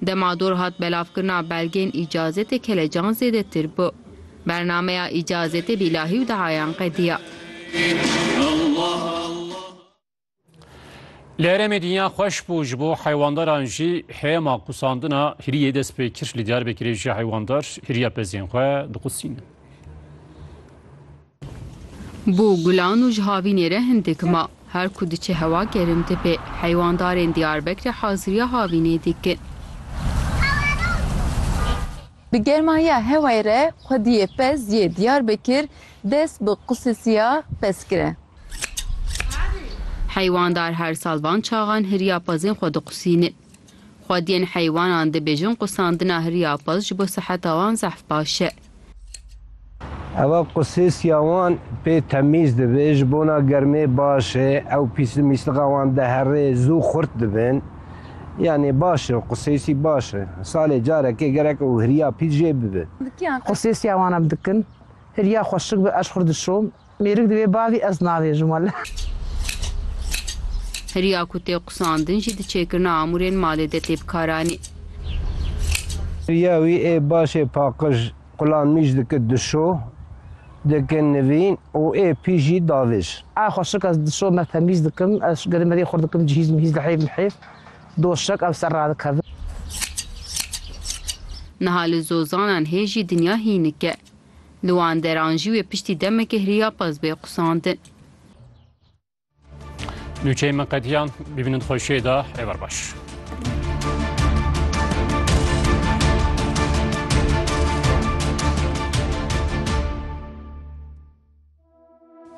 Dema dor hat belavkirina belgên îcazetê kelecan zêdetir bû. Bernameya îcazetê bîlahî û dihayan qediya. Li herêmê dinya xweş bû ji bo heywandaran jî heyema qusandina hiriyê dest pê kir. Li Diyarbekirê jî heywandar hiriya pezên xwe diqusînin. Bo gulan û ji havînê re hindik ma. Her ku diçe hewa gerim dibe. Heywandarên Diyarbekre haziriya havînê dikin. Di germahiya hewayê re xwediyê pez yê Diyarbekir dest bi qusisiya pez kire. Heywandar her sal van çaxan hiriya pezên xwe diqusînin. Xwediyên heywanan dibêjin qusandina hiriya pez ji bo siheta wan zehf baş e. Eva qusêsiya wan pê temîz dibe, ji bona germê baş e, ew pîslimîsliqa wan dihere, zû xurt dibin. Yanî baş e, qusêsî baş e. Salê carekê gerek ew hiriya pîs jê bibe. Qusêsiya wan em dikin, hiriya xweşik be ez ji xwe re dişom, Mêrik di wê bavî ez nabêjim wele. Riya ku tê qusandin jî di çêkirina amûrên malê de tê bikaranî. Riya wî ê başê paqij qulan mîj dikir di şo, dikir nivîn û ê pî jî davêj. A xweşik ez di şo me temîz dikim, ez gerî me rê xurt dikim cihîz mihîz li heyv li heyv doşek ev ser radikevin. Niha li zozanan hê jî dinya hînik e. Li wan deran jî wê piştî demekê hiryapez bê qusandin. Nûçeyê min qediyan bibînin xweşiyê da êvar baş.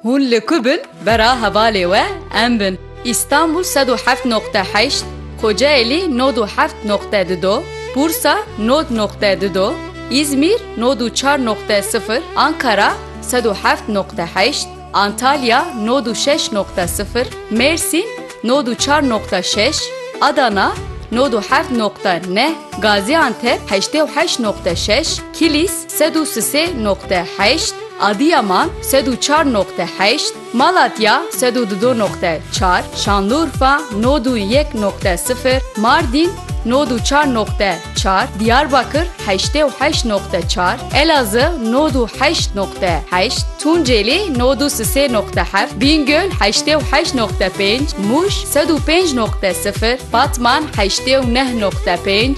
Hûn li ku bin bera hevalê we em bin. Îstanbul sed û heft noqte heşt, Kocaelî nod û heft noqte du do, Bursa nod noqte du do, Îzmîr nod û çar noqte sifir, Ankara sed û heft noqte heşt, Antalya nod û şeş noqte sifir, Mêrsîn nod û çar noqte şeş, Adana nod û heft noqte neh, Gazîantep heştê û heşt noqte şeş, Kilîs Sed û sisê noqte heşt, Adiyaman, sed û çar noqte heşt, Malatya, sed û dido noqte çar, Şanlurfa, nod û yek noqte sifir, Mardîn, nod û çar noqte çar, Diyarbakir, heştê û heşt noqte çar, Elazığ, nod û heşt noqte heşt, Tunceli, nod û sisê noqte heft, Bîngöl, heştê û heşt noqte pênc, Mûş, sed û pênc noqte sifir, Batman, heştê û neh noqte pênc,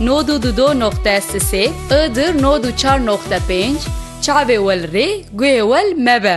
Nod û du do noqte sisê i dir nod û çar noqte pênc Çavê wel rê guhê wel mebe.